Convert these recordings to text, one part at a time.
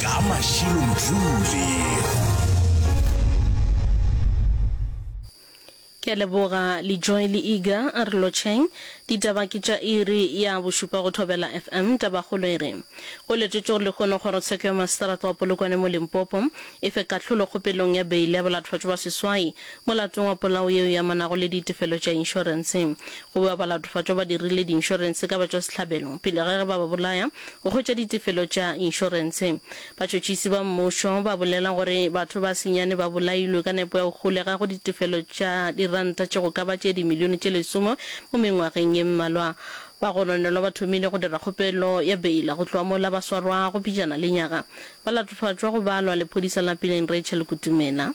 Ka Mashilo Mdluli. Ke a leboga Lejoy le Iga a re lotšheng. Ditaba ke tša iri ya bošupa go Thobela FM. Tabakgolo e re, Go letšwetše gore lehono kgorotsheko ya maseterata wa Polokwane mo Limpopo e fe kahlolo kgopelong ya beile ya balatofetšwa ba seswai Molatong wa polao yeo e amanago le ditefelo tša inšorense, go bewa balatofatšwa ba dirile diinšorense ka batšwasehlabelo pele ga ge ba ba bolaya go hwetša ditefelo tša inšorense. Batšhotšhisi ba mmušo ba bolela gore batho ba senyane ba bolailwe ka nepo ya go holega go ditefelo tša diranta tše go ka ba tše dimilione tše lesome mo mengwageng ye mmalwa. Ba gononelwa ba thomile go dira kgopelo ya beila go tloga mola ba swarwa go pejana le nyaga. Balatofatšwa go balwa lephodisa la Pileng Rachel Kutumela.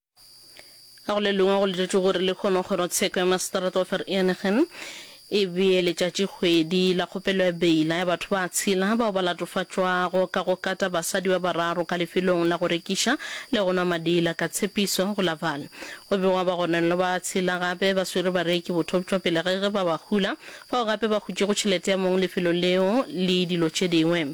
Ka go le lengwe go letetšwe gore le hwema kgorotsheko ya maseterata wa Vereeniging e bee letšatšikgwedi la kgopelo ya beila ya batho ba tshela bao ba latofatšwago ka go kata basadi ba bararo ka lefelong la go rekiša le go nwa madi la Katshepiso go la Vaal. Go begwa ba gononelo ba tshela gape ba swere bareki bothoptšwapele ge ge ba ba hula, fao gape ba hutšego tšhelete ya mong lefelo leo le dilo tše dingwe.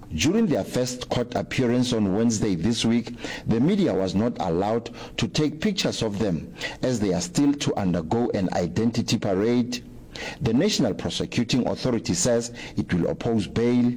During their first court appearance on Wednesday this week, the media was not allowed to take pictures of them as they are still to undergo an identity parade. The National Prosecuting Authority says it will oppose bail.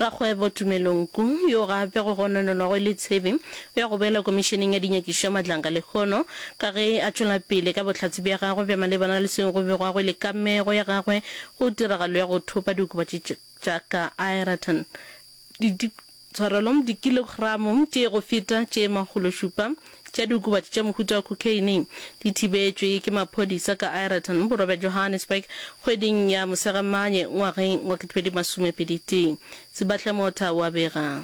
Rakgwebo Tumelo Nku, yo gape go gononelwago e le Tshepe, o ya go boela Komišeneng ya Dinyakišo ya Matlanka lehono ka ge a tšwela pele ka bohlatse bja gagwe bja malebana le seo go begwago e le kamego ya gagwe Go tiragalo ya go thopa diokobatši tša ka Ireton, di, tshwarelo, dikilogramo tše go feta tše makgološupa tša diokobatši tša mohuta wa khokheine di thibetšwe ke maphodisa ka Ireton, borwa bja Johannesburg, kgweding ya Mosegamanye ngwageng wa 2021, Sebahla-Motha wa bega.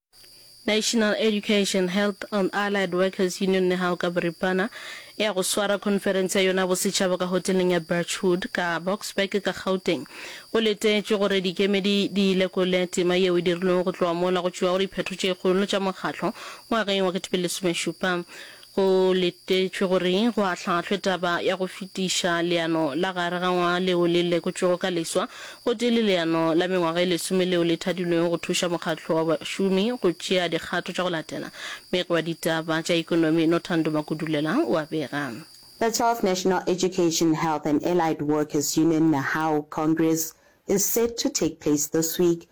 National Education, Health and Allied Workers Union Nehao ka boripana e ya go swara khonferense ya yona ya bosetšhaba ka hoteleng ya Birchwood ka Boksburg ka Gauteng. Go letetšwe gore dikemedi di lekole tema yeo e dirilwego go tloga mola go tšewago diphetho tše kgolo tša mokgatlo ngwageng wa 2010. Go letetšwe gore go ahlahlwe taba ya go fetiša leano la gare ga ngwaga leo le lekotšwego ka leswa gotee le leano la mengwaga e lesome leo le thadilwego go thuša mokgatlo wa bašomi go tšea dikgato tša go latela. Meg wa ditaba tša ekonomi Nothando Makudulela o a bega. The twelfth National Education, Health and Allied Workers Union, NAHAWU, Congress is set to take place this week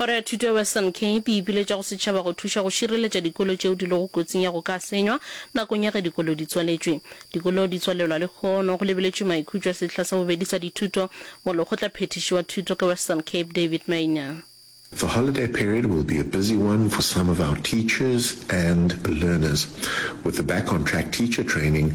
Kgoro ya Thuto ya Western Cape e ipiletša go setšhaba go thuša go šireletša dikolo tšeo di lego kotsing ya go ka senywa nakong ya ge dikolo di tswaletšwe. Dikolo di tswalelwa lehono go lebeletšwe maikhutšo a sehla sa bobedi sa dithuto, mo Lekgotla Phethiši wa Thuto ka Western Cape David Maynor. The holiday period will be a busy one for some of our teachers and learners, with the Back on Track Teacher Training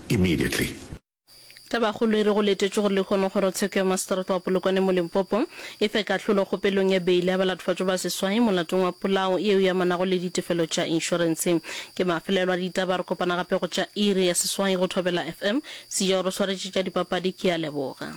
immediately. Tabakgolo e re go letetšwe gore lehono kgorotsheko ya maseterata wa Polokwane mo Limpopo e fe kahlolo kgopelong ya beile ya balatofadjo ba seswai molatong wa polao yeo e amanago le ditefelo tša inšorense. Ke mafelelo a ditaba re kopana gape go tša iri ya seswai go Thobela FM. Sejao re swaretše tša dipapadi ke a leboga.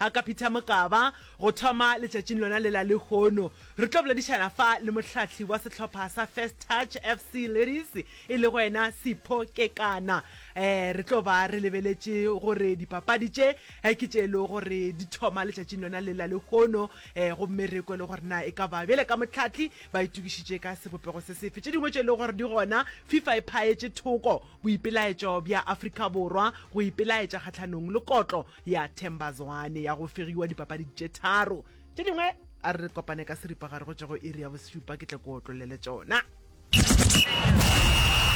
A ka phitha mokaba, go thoma letšatšing lona lela lehono. Re tlo boledišana fa le mohlahli wa sehlopha sa First Touch FC Ladies, e lego yena Sipho Kekana. Eh, re tlo ba re lebeletše gore dipapadi tše eh, ke tše e lego gore di thoma letšatšing lona lela lehono, eh, gomme re kwe le gore na e ka ba bjale ka mohlahli ba itokišitše ka sebopego se sefe. Tše dingwe tše e lego gore di gona, Fifa e phaetše thoko boipelaetšo bja Afrika Borwa go ipelaetša kgahlanong le kotlo ya Themba Zwane ya go fegiwa dipapading tše tharo tše dingwe a re kopane ka seripagare go tšego iri ya bosupa ke tle ko otlolele tšona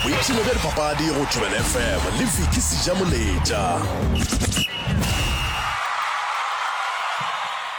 boipshino bja dipapadi go thobela fm le viki seja moletša